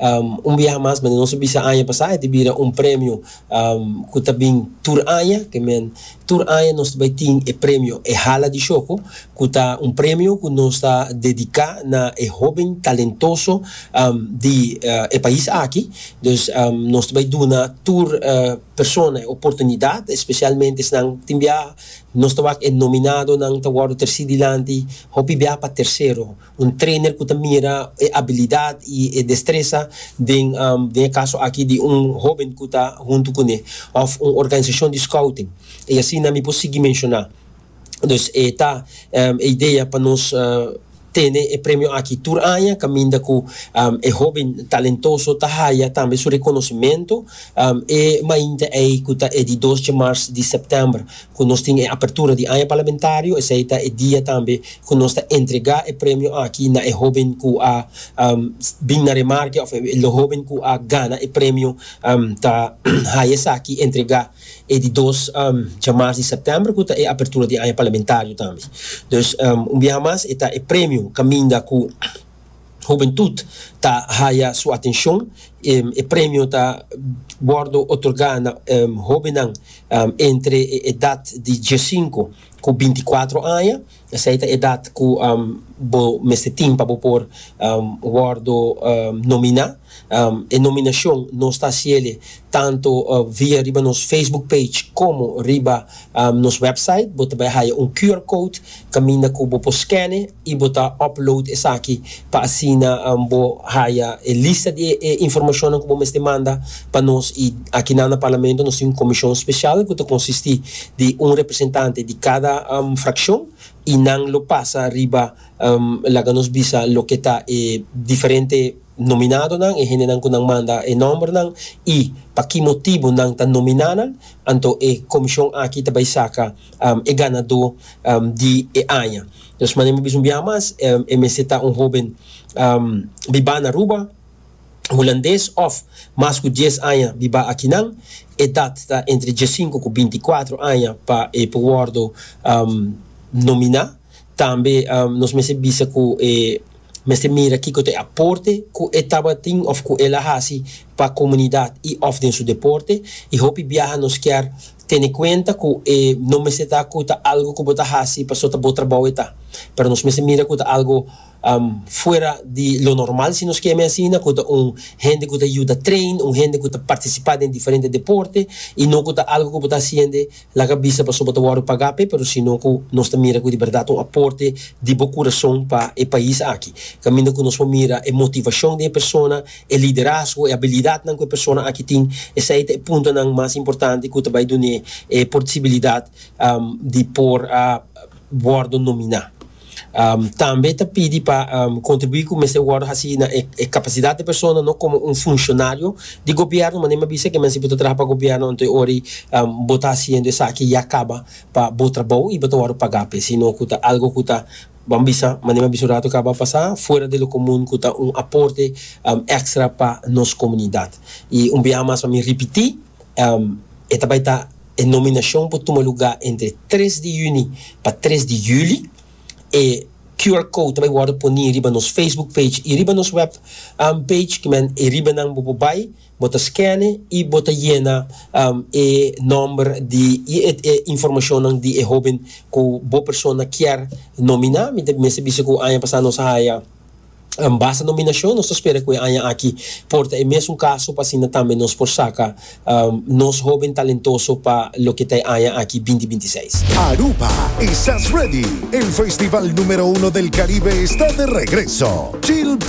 Un biaha mas men di nos a bisa aña pasá, e ta bira un premio ku ta bin tur aña. Ke men, tur aña nos ta bai tin e premio E Hala di Shoko, ku ta un premio ku nos ta dediká na e hóben talentoso di e pais aki. Dus, nos ta bai duna tur persona e oportunidat, spesialmente esnan, tin biaha nos ta wak e nominadonan ta wòrdu trasí dilanti, hopi biaha pa tersero. Un trainer cu ta mira e abilidad y e destresa den den e caso aki di un hoben cu ta hunto cu ne of un organisacion di scouting y asina mi por sigui menciona. Dus e ta e idea pa nos tene e premio aki tur aña caminda cu e hoben talentoso ta haya tambe su reconocimento e mainta ey cu ta e di dos dje mars di september ku nos tin e apertura di aña parlamentario, esei ta e dia tambe ku nos ta entregá e premio aki na e hóben ku a bin na remarke òf e hóben ku a gana e premio. Ta haya esaki entregá e di dos dja mars di sèptèmber ku ta e apertura di aña parlamentario tambe. Dus un biaha mas e ta e premio kaminda ku. Hubentut ta haya su atencion. E premio ta wordo otorga na hobennan entre e edad di diescinco cu binticuatro aña. Esey ta e edad cu bo mester tin pa bo por wordo nomina. E nominacion nos ta haciele tanto via riba nos Facebook page como riba nos website. Bo ta bai haya un QR code caminda cu bo por scane y bo ta upload esaki pa asina bo haya e lista di e informacionnan cu bo mester manda pa nos. Y akinan na Parlamento nos tin un comision special cu ta consisti di un representante di cada fraccion y nan lo pasa riba laga nos bisa loke ta e diferente nominadonan, e hendenan ku nan manda e nòmbernan i pa ki motibu nan ta nominá nan, anto e komishon aki ta bai saka e ganadó di e aña. Nos manera mi bisa un biaha mas, e mester ta un hóben bibá na Aruba, hulandes òf mas ku dies aña bibá akinan. Edat ta entre diesinku ku binti kuatru aña pa e por wòrdu nominá. Tambe nos mester bisa ku e. mester mira kiko ta e aporte ku e tabatin òf ku el a hasi pa komunidat i òf den su deporte. I hopi biaha nos kier tene kuenta ku e no mester ta ku ta algu ku bo ta hasi paso ta bo trabou e ta, pero nos mester mira ku ta algu fuera di lo normal, si nos ke mi asina, ku ta un hende ku ta yuda train, un hende ku ta partisipá den diferente deporte i no ku ta algu ku bo ta hasiende Laga bisa pasobra ta wòrdu pagá p'e, pero sino ku nos ta mira ku di bèrdat un aporte di bo kurason pa e pais aki. Kaminda ku nos por mira e motivashon di e persona, e liderazgo, e abilidatnan ku e persona aki tin, esei ta e puntonan mas importante ku ta bai dun'é e porsibilidat di por wòrdu nominá. Tambe ta pidi pa kontribuí ku mester wòrdu hasí na e kapasidat di e persona no komo un funshonario di gobièrnu manera mi a bisa ke men si bo ta traha pa gobièrnu anto e ora ei bo ta hasiendo esaki ya kaba pa bo trabou i bo ta wòrdu pagá p'e sino ku ta algu ku ta ban bisa manera mi a bisa un ratu kaba pasá fuera de lo komun ku ta un aporte èkstra pa nos komunidat i un biaha mas pa mi ripití. E ta bai ta e nominashon por tuma lugá entre tres di yüni pa tres di yüli. E QR code ta bai wòrdu poní riba nos Facebook page i riba nos wèp page ki men e riba nan bo por bai, bo ta skène i bo ta yena e nòmber di i e informashonnan di e hóben ku bo persona kier nominá. Mi ta mester bisa ku aña pasá nos a haya. An basta nominashon, nos ta spera ku e aña aki por ta e mesun kaso pa asina tambe nos por saka nos hóben talentoso pa loke ta e aña aki binti binti seis. Aruba, Estás Ready? El festival número uno del Caribe está de regreso! Chill.